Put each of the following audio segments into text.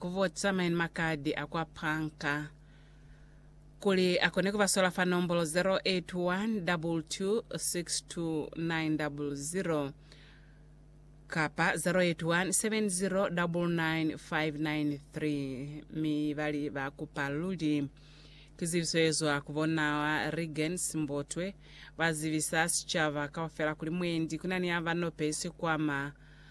Ku bo tsamaya ni makadi a kwa pranka kuli a kone ku ba sola fa nombolo 0812262900 kapa 0817099593 mi ba li ba kupa luli. Ki zibiso ye zwa ku bo Na Reagan Simbotwe, ba zibisa sicaba kaufela kuli mwendi ku na ni a ba nopeli sikwama.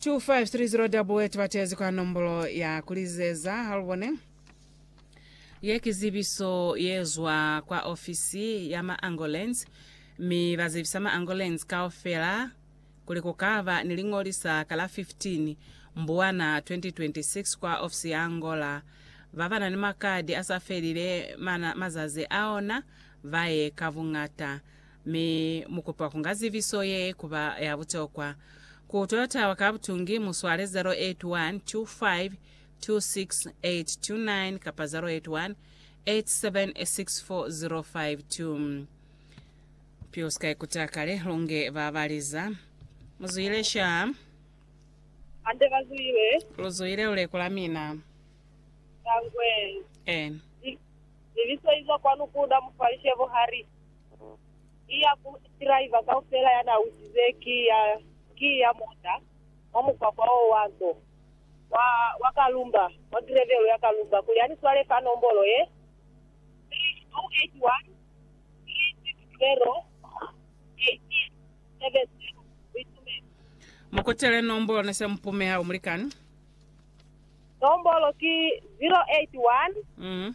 253088 batezi kwa nombolo ya kulizeza halubone ye ki zibiso ye zwa kwa ofisi ya ma Angolens mi bazibisa ma Angolens kaufela kuli kukaba ni lingolisa ka la 15 Mbuwana 2026 kwa ofisi ya Angola. Babana ni makadi asa felile mazazi aona baye ka bungata. Mi mu kupa ku nga zibiso ye ku ba ya butokwa. Ku utwela taba ka butungi, mu swale 081 25 26 829 kapa 081 8764052. Pyo si ka ikuta kale, lu nge ba ba liza. Mu zwile sha. Hande ba zwile. Lu zwile lu lekola mina. Ka ngwe. Amen. Libiso izwa kwanu ku da mufalishe buhali. Ki ya ku driver kaufela ya na uzize ki ya, ki ya mota mwa mukwakwa oo wa nto, wa, wa kalumba, mwa grevelo ya kalumba kuli ani swale fa nombolo ye 30813601870. Mu kutele nombolo ne se mu pume hao mulikani. Nombolo ki 081. Mm.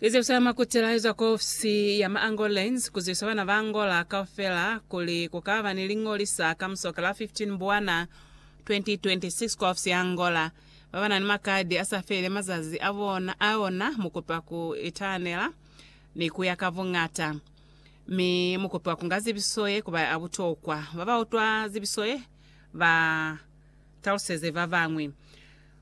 Kezeluso ya makutela yezwa ku ofisi ya ma Angolans kuzibisa bana ba Angola kaufela kuli kukaba ni liñolisa kamuso ka la 15 Mbwana 2026 kwa ofisi ya Angola. Babana ni makadi asa feli mazazi abona a ona mukopiwa ku itaanela ni kuya ka buñata. Mi mukopiwa kunga zibiso ye kuba ya butokwa. Baba utwa zibiso ye ba taluseze babañwi.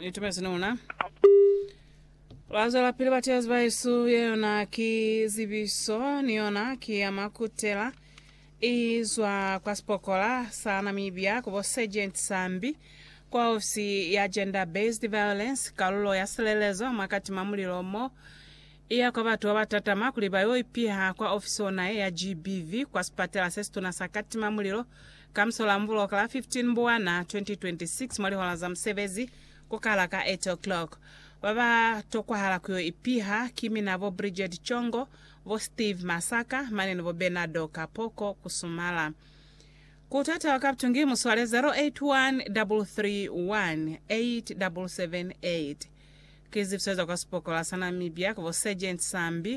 Ni itumezi ni una. Ra zwelapili batezi ba Yesu, ye yona ki zibiso ni yona ki ya makutela i zwa kwa sipokola sa Namibia ku bo Sergeant Sambi kwa ofisi ya Gender Based Violence kalulo ya silelezo mwa kati mwa mulilo mo i ya kwa batu ba ba tatama kuli ba yo ipiha kwa ofisi onaye ya GBV kwa sipatela se situna sa kati mwa mulilo Kamso la Mvulok la 15 Mbuwana 2026 mwa lihola za musebezi, ku kala ka 8 o'clock, ba ba tokwahala ku yo ipiha ki mina bo Bridget Chongo, bo Steve Masaka mane ni bo Bernardo Kapoko ku sumala. Ku tatawa ka butungi mu swale 0813318778. Ki zibiso za kwa sipokola sa Namibia ki bo Sergeant Sambi,